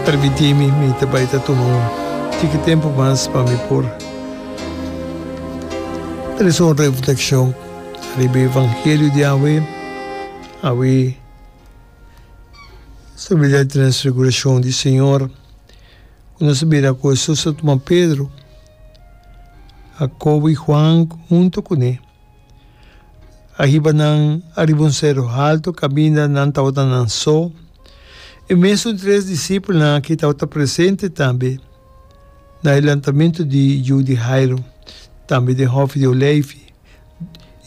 Permití mi, mi ta bai ta tuma un tiki tempu mas pa mi por trese un reflekshon riba e evangelio di awe. Awe stabilidat di transfigurashon di Señor, ku nos a bira ku Hesus a tuma Pedro, Jakobo i Huan huntu kuné. Ariba nan, ariba un seru haltu, kaminda nan tabata nan so. E mesun tres disipelnan akí tabata presente tambe na e lantamentu di yu di Jairo, tambe den Hòfi di Oleifi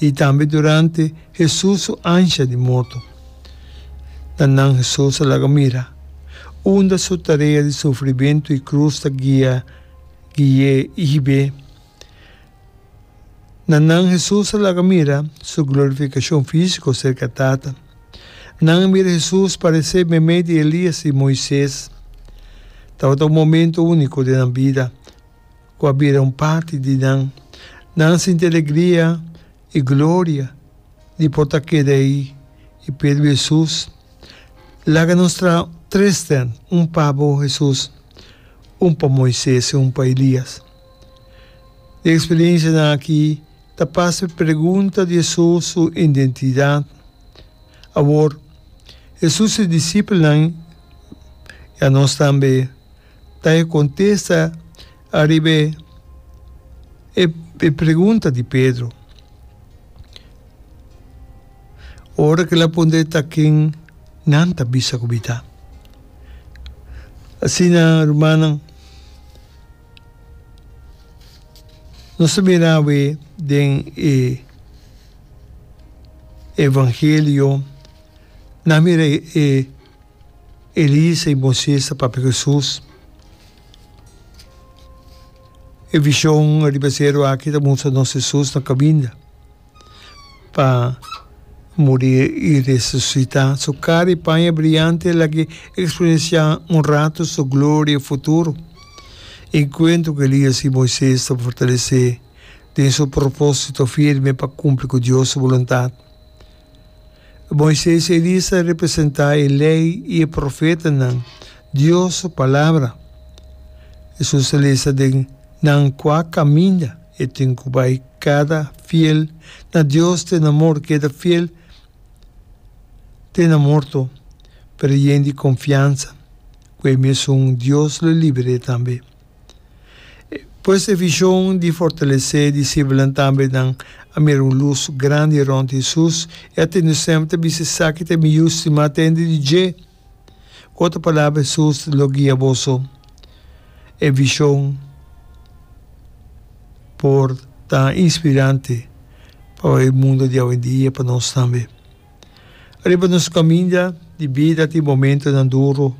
i tambe durante Hesus su ansha di morto. Na nan Hesus a laga mira, unda su tarea di sufrimentu i krus ta guia gui'é i hib'é. Na nan Hesus a laga mira su glorificacion fisico cerca Tata. Nan a mira Hesus parece meimei di Elias i Moises. Tabata un momento unico den nan bida cu a bira un parti di nan. Nan a sinti alegria i gloria di por ta keda ei i Pedro i Hesus. Laga nos traha tres den, un pa bo, Hesus, un pa Moises i un pa Elias. Di eksperensianan aki ta pasa pregunta di esun su identidat. Awor, Hesus e disipelnan, i anos tambe, ta e kontesta ariba e pregunta di Pedro. Ora ku el a puntra e ta ken nan ta bisa ku mi ta. Asina rumannan. Nos ta bira awe den e evangelio, nan mira e Elisa i Moises ta papia ku Jesus. E vishon riba seru aki ta mustra nos Jesus na kaminda. pa muri i resusitá. Su kara i paña briante a lag'é eksperensiá un ratu su gloria futuro. Enkuentro ku Elias i Moises ta fortales'é den su propósito firme pa kumpli ku Dios su boluntat. Moises i Elias ta representá e Lei i e profetanan, Dios su Palabra. Hesus ta lesa den nan kua kaminda. E tin cu bay cada fiel na Dios te na mor keda fiel te na morto, pero e yen di confiansa cu e mesun Dios lo libere tambe. Pues e vision di fortalece disciblenan tambe nan a mira un luz grandi rond Hesus y a tende semper ta bisa esaki ta e miyu stima tende di dje. Ku otro palabra Hesus lo guia boso e vishon por ta inspirante pa e mundo di awendia, pa nos tambe. Riba nos kaminda di bida tin momentunan duru,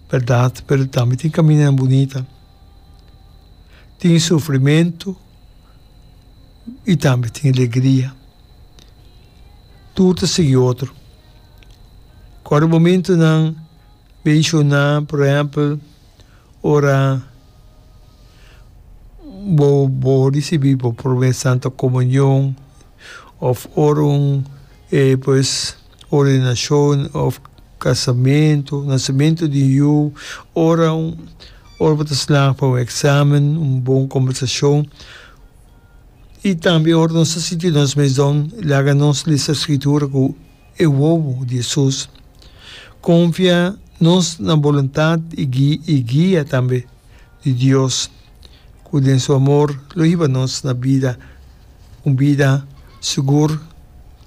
bèrdat, pero tambe tin kamindanan bunita. Tin sufrimentu i tambe tin alegria. Tur ta sigui otro. Kòrda momentunan menshoná, por ehèmpel, ora bo bo risibí bo promé Santa Komunion òf ora un pues ordenashon òf kasamentu, nasementu di un yu, ora un ora bo ta slaagba un eksamen, un bon kòmbersashon. I tambe ora nos ta sinti nos mesdon laga nos lesa e Skritura ku e wowo di Hesus. Konfia nos na boluntat i guia tambe di Dios ku den su amor lo hiba nos na bida, un bida sigur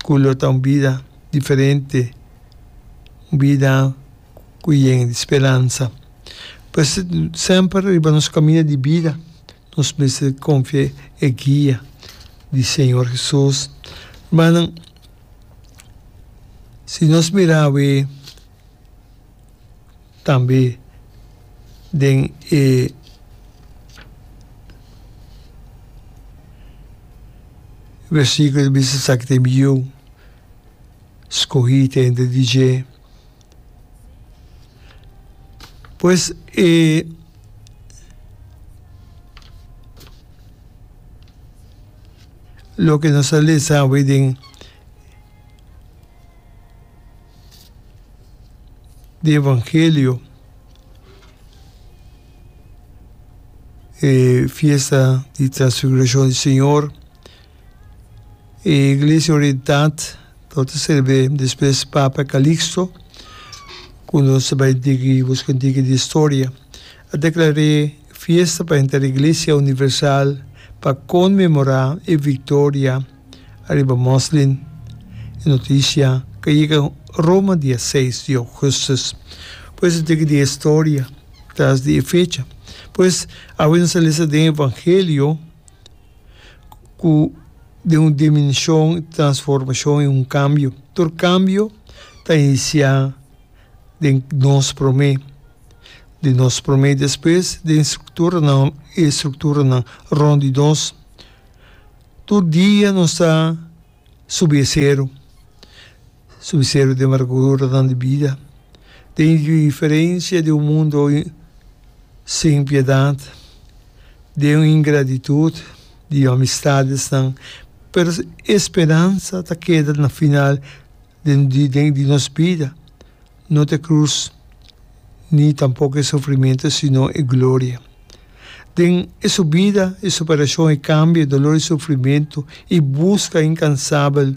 ku lo ta un bida diferente, un bida ku yen di speransa. P'esei semper riba nos kaminda di bida Nos mester konfia e guia di Señor Hesus. Rumannan, si nos mira awe tambe den e versikulo ta bisa esaki ta e mi yu, skohi ta hende di dje. Pues e loke nos ta lesa awe den di evangelio e fiesta di transfiguracion di señor E Iglesia Orientat lo ta serbé despues Papa Calixto, cu nos ta bay digi, busca digi di historia, a declar'é fiesta pa henter Iglesia Universal pa conmemorá e victoria ariba Moslin. E noticia ca yega Roma dia seis di Augustus. Pues digi di historia tras di e fecha? Pues awe nos a lesa den Evangelio. ku den un dimenshon transformashon i un kambio. Tur kambio ta inisiá den nos promé, di nos promé i despues den strukturanan e strukturanan rònt di nos. Tur dia nos ta subi e seru. Su misterio di amargura nan di bida ta indiferencia di un mundo sin piedad, di un ingratitud, di amistades nan, pero e speransa ta keda na final di nos bida. No t'e cruz, ni tampoco e sufrimento, sino e gloria. Den e subida, e superacion, e cambio, e dolor, e sufrimento, y busca incansabel,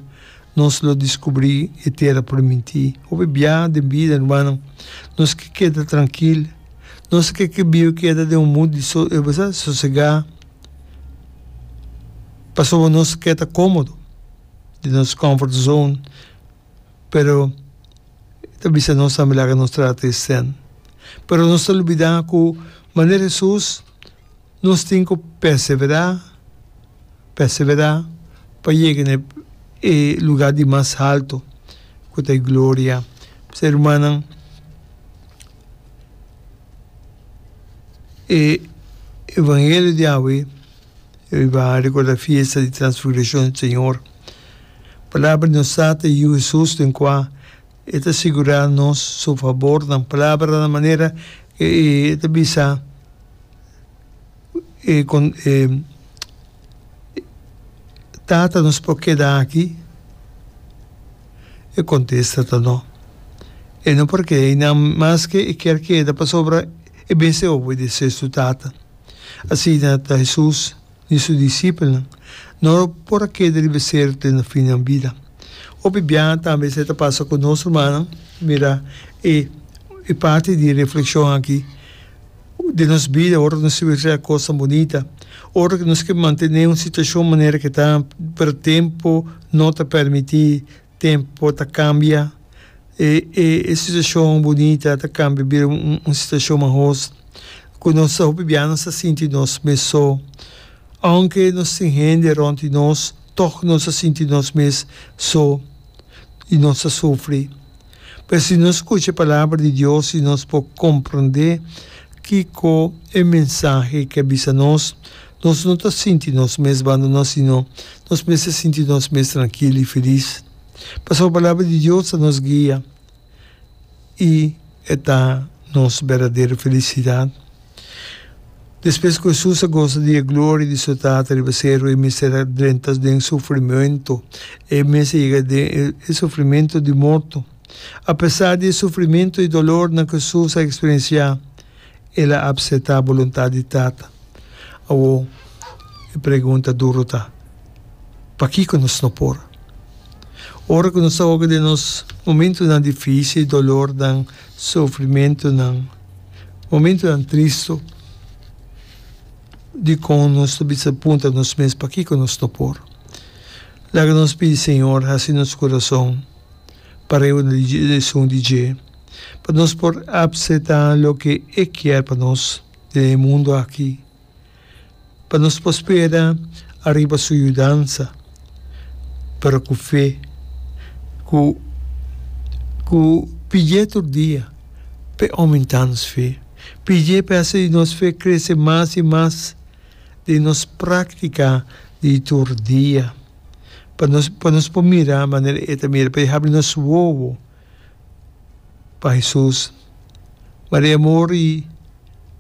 nos lo descubri e tera por minti. Hopi bia den bida, hermannan, nos ke keda trankil. Nos ke ke biba keda den un mut di so, bo sa, sosega, pasobra nos ke ta comodo den nos comfort zone. pero e ta bisa nos tambe laga nos trata e sèn. Pero nos ta lubidá ku manera Hesus nos tin ku perseverá, perseverá pa yega na e lugá di mas haltu ku ta e gloria. P'esei rumannan, e evangelio di awe, e bo a rekordá fiesta di Transfigurashon di Señor. Palabra di un sa ta yiu Hesus den kua e ta sigurá nos su fabornan. Palabra na manera e ta bisa e Tata nos por keda aki, e kontesta ta no. E no por keda einan maske e kier keda pasobra e mes e obedesesu Tata. Asina ta Hesus. di su disipelnan no por a keda riba ser den e finnan bida. Hopi biaha tambe esei ta pasa ku nos rumannan. Mira e e parti di reflekshon aki den nos bida ora ku nos ta bira kosnan bunita, ora ku nos ke mantené un situashon manera ku ta pero tempu no ta permití. Tempo ta cambia, e e e situacion bunita ta cambia bira un un un situacion mahoz, cu nos ta hopi biaha nos ta sinti nos mes so, aunke nos tin hende rond di nos, toch nos ta sinti nos mes so y nos ta sufri. Pero si nos scucha e palabra di Dios y nos por comprende kico e mensahe ke bisa nos, Nos no ta sinti nos mes bandoná, sino nos mester sinti nos mes trankil i felis, pasobra Palabra di Dios ta nos guia i e ta nos berdadero felisidat. Despues ku Hesus a gosa di e gloria di su Tata riba seru, e mester a drenta den sufrimentu, e mes a yega den e sufrimentu di morto. Apesar di e sufrimentu i dolornan ku Hesus a eksperensiá, El a apseta boluntat di Tata. Awor, e pregunta duru ta, Pakiko nos no por? Ora ku nos ta hoga den nos momentunan difísil, dolornan, sufrimentunan, momentunan tristu, dikon nos ta bisa punta nos mes, Pakiko nos no por? Laga nos pidi Señor hasi nos kurason parehua di esun di dje. pa nos por apseta loke E kier pa nos den e mundu aki, pa nos por spera ariba Su yudansa, pero ku fe, ku ku pidié tur dia p'E oumentá nos fe, pidié p'E hasi nos fe krese mas i mas den nos práktika di tur dia, pa nos pa nos por mira manera E ta mira, pa E habri nos wowo. pa Hesus. Ma di amor i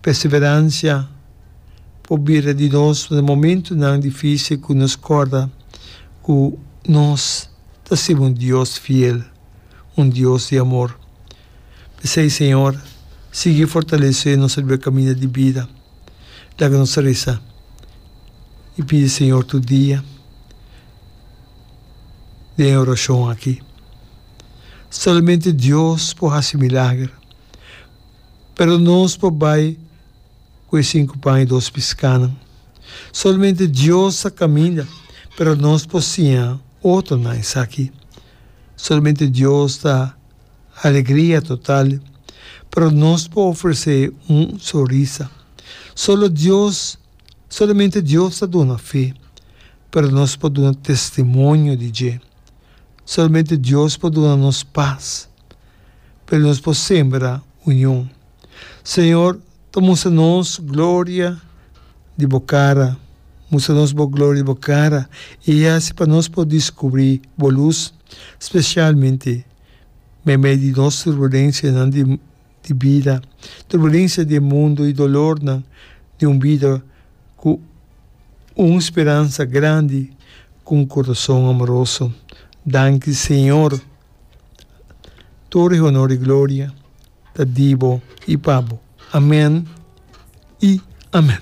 perseveransia por bira di nos na momentunan difisil ku nos kòrda ku nos ta sirbi un Dios fiel, un Dios di amor. P'esei, Señor, sigui fortalesé nos riba e kaminda di bida. Laga nos resa i pidi Señor tur dia den e orashon aki. Solamente Dios por haci milager. Pero nos por bay cu e cinco pan y dos piscanan. Solamente Dios a caminda, pero nos por siña otronan esaki. Solamente Dios ta alegria total, pero nos por ofrece un sonrisa. Solo Dios, solamente Dios ta duna fe, pero nos por duna testimonio di dje. Solamente Dios por duna nos pas, pero nos por sembra union. Señor, ta mustra nos gloria di Bo cara, mustra nos Bo gloria di Bo cara y haci pa nos por descubri Bo luz, specialmente medio di nos turbulencianan di. di bida, turbulensia di e mundu i dolornan di un bida ku un speransa grandi ku un kurason amoroso. Danki Señor. Tur e honor i gloria ta di bo i pa bo. Amen i amen.